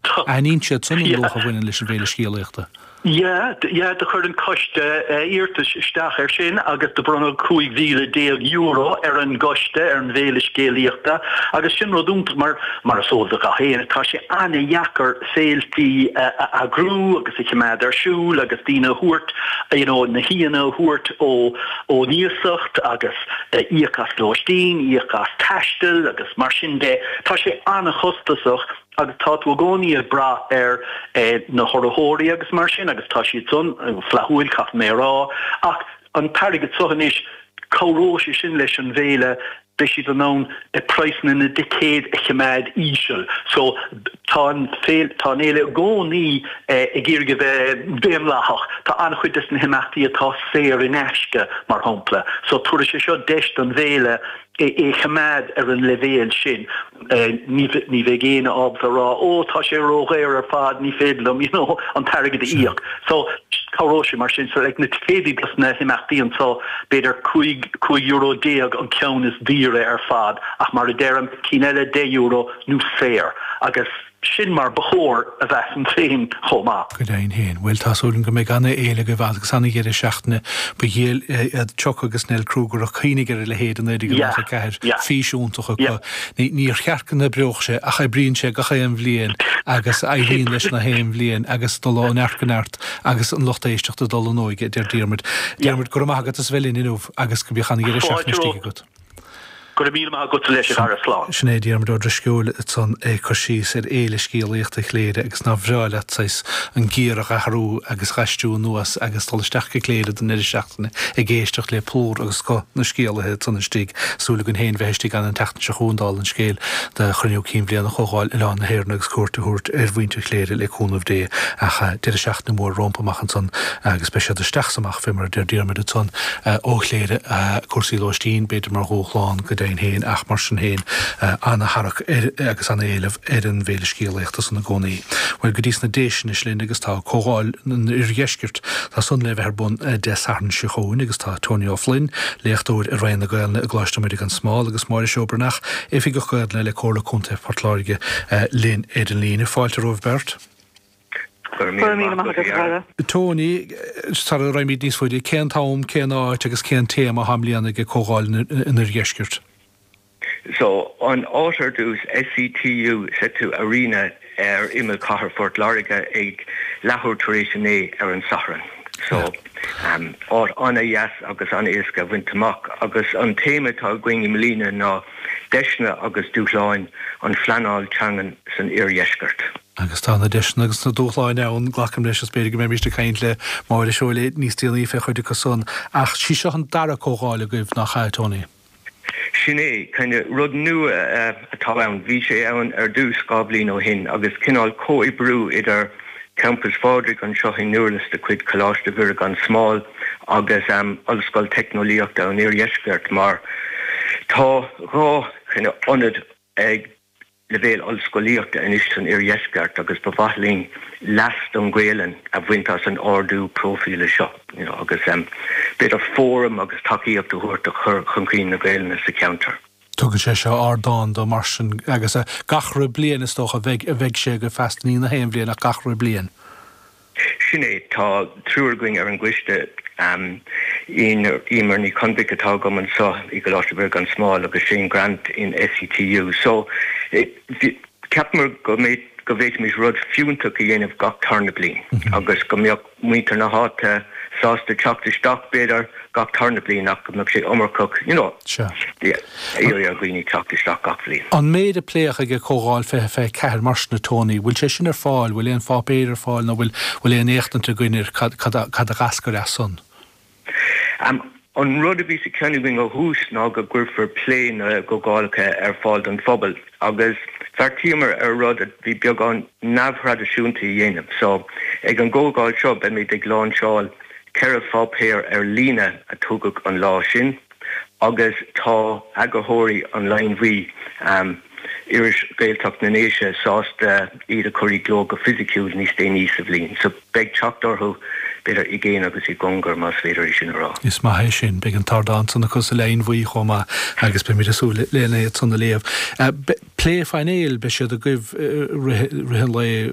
Aithníonn siad sin an luach a bhaineann leis an bhféile scéalaíochta. Yeah, do chuir an coiste iarratas isteach ar sin agus do bronnadh €15,000 ar an gcoiste ar an bhféile scéalaíochta agus sin rud iontach mar, mar is eol do gach éinne, tá sé ana-dheacair féiltí a eagrú agus a choimeád ar siúl agus daoine a thabhairt, you know, na haíonna a thabhairt ón iasacht agus íoc as lóistín, íoc as taisteal agus mar sin de. Tá sé ana-chostasach. Agus tá tú i gcónaí ag brath ar na hurraitheoirí agus mar sin agus tá siad san flaithiúil, caithfidh mé a rá, ach an t-airgead seo anois, cabhróidh sé sin leis an bhféile, beidh siad in ann praghsanna na dticéad a choimeád íseal. So, tá an féile, tá an fhéile i gcónaí ag iarraidh a bheith daonlathach. Tá an-chuid des na himeachtaí atá saor in aisce, mar shampla. So, tabharfaidh sé seo deis don bhféile é a choimeád ar an leibhéal sin, ní bheidh éinne ábalta a rá, ó, tá sé ródhaor ar fad, ní féidir liom, you know, an t-airgead a íoc. So, cabhróidh sé mar sin. So, like, na ticéidí dos na himeachtaí anseo, b'fhéidir cúig, cúig euro déag an ceann is daoire ar fad, ach mar a deirim, cinn eile, deich euro nó saor. Agus. Sin mar ba chóir a bheith, measaim féin chomh maith. Go deimhin féin. Bhuel, tá súil agam go mbeidh an-fhéile agaibh agus an-dheireadh seachtaine. Ba dhiail iad Chuck agus Nell Kruger a chuimhnigh ar a leithéid i naoi déag nócha ceathair. Fís iontach acu. Níor cheart go n-oibreodh sé ach oibríonn sé gach aon bhliain agus éiríonn leis na haon bhliain agus dul ó neart go neart agus an lucht éisteachta dul in óige, a deir Diarmuid. Diarmuid, go raibh maith agat as bheith linn inniu agus bíodh an-dheireadh seachtaine istigh agat. Go raibh míle maith agatsa leis a chara. Slán. Sin é Diarmuid Ó Drisceoil ansan ag cur síos ar Fhéile Scéalaíochta Chléire agus nár bhreá leat, saghas, an giar a dh'athrú agus dh'aistriú anuas agus dul isteach go Cléire don deireadh seachtaine ag éisteacht le plúr agus scoth na scéalaithe ansan istigh, súil againn féin bheith istigh ann an tseachtain seo chugainn dála an scéil, do Chruinniú Cinn Bhliana Chomhdháil Oileán na hÉireann agus cuairt a thabhairt ar mhuintir Chléire le cúnamh Dé ach deireadh seachtaine mhór rómpa amach ansan agus beidh siad isteach 's fé mar a deir Diarmaid ansan, ó Chléire, cúrsaí lóistín, b'fhéidir mar dhúshlán go deimhin féin, ach mar sin féin, an-tharrac ar agus an-éileamh ar an bhféile scéalaíochta san i gcónaí. Bhuel, go dtí sna Déise anois linn agus tá Comhdháil an Oirdheiscirt, tá san le bheith ar bun Dé Sathairn seo chugainn agus tá Tony Ó Floinn, léachtóir i Roinn na Gaolainne i gColáiste Muire gan Smál agus Máire Seó Breathnach, Oifigeach Gaolainne le Comhairle Contae Phort Láirge linn ar an líne. Fáilte romhaibh beirt. Go raibh míle maith agat, a chara. Tony, sara raghaimid níos faide, cén t-am, cén áit agus cén téama atá i mbliana ag an gcomhdháil an Oirdheiscirt? So, an áit ar dtús, SETU, SETU Arena, ar imeall chathair Phort Láirge ag leathuair tar éis a naoi ar an Satharn. So, áit an-deas agus an-éasca a bhaint amach. Agus an téama atá againn i mbliana ná Deiseanna agus Dúshláin an Phleanáil Teangan san Oirdheisceart. Agus tá na deiseanna agus na dúshláin ann, glacaim leis, is b'fhéidir go mbeimíst ag caint le Máire Seó níos déanaí fé chuid acu san. Ach sí seo an dara comhdháil agaibh, nach ea, Tony? Sin é, kind of rud nua atá ann. Bhí sé ann ar dtús dhá bhliain ó shin agus cineál comhoibriú idir Campas Phádraig anseo i nDurlas de chuid Coláiste Mhuire gan Smál agus Ollscoil Teicneolaíochta an Oirdheiscirt mar tá dhá kind of ionad ag leibhéal ollscolaíochta anois san Oirdheisceart agus ba mhaith linn leas don Ghaolainn a bhaint as an ardú próifíle seo agus b'fhéidir fóram agus tacaíocht a thabhairt do chur chun cinn na Gaolainne sa cheantar. Tugann sé seo ardán dó mar sin agus gach re bliain is dócha bheidh sé agaibh feasta, ní 'chaon bhliain ach gach re bliain. Sin é, tá triúr againn ar an gcoiste, Eimear Nic Conmhaic atá liom anseo i gColáiste Mhuire gan Smál agus Shane Grant in SETU, so cheapamar go bhféadfaimis rud fiúntach a dhéanamh gach tarna bliain agus go mbeadh muintir na háite sásta teacht isteach b'fhéidir, gach tarna bliain ach go mbeadh sé iomarcach, you know, yeah, iarraidh ar dhaoine teacht isteach gach bliain. An méid a pléadh ag ag comhdháil 20, 24 mar sin a Tony, bhfuil sé sin ar fáil, bhfuil aon pháipéir ar fáil nó bhfuil bhfuil aon éachtaint againn ar cad cad a cad a d'eascair as son? Am, An rud a bhí sa cheann againn ó thús ná go gcuirfear plé na gcomhdhálacha ar fáil don phobal. Agus bheartaíomar rud a bhí beagán neamhthraidisiúnta a dhéanamh. So, ag an gcomhdháil seo beimid ag láinseáil ceithre pháipéar ar líne a tugadh an lá sin agus tá eagarthóirí An Linn Bhuí, iris Ghaeltacht na nDéise, sásta iad a chur i gcló go fisiciúil níos déanaí sa bhliain. Beidh teacht orthu, b'fhéidir, i gcéin agus i gcongar, más féidir é sin a rá. Is maith é sin. Beidh an t-ardán san acu sa Linn Bhuí chomh maith agus beimid ag súil lena iad san a léamh. Plé phainéil, beidh siad agaibh i rith an lae.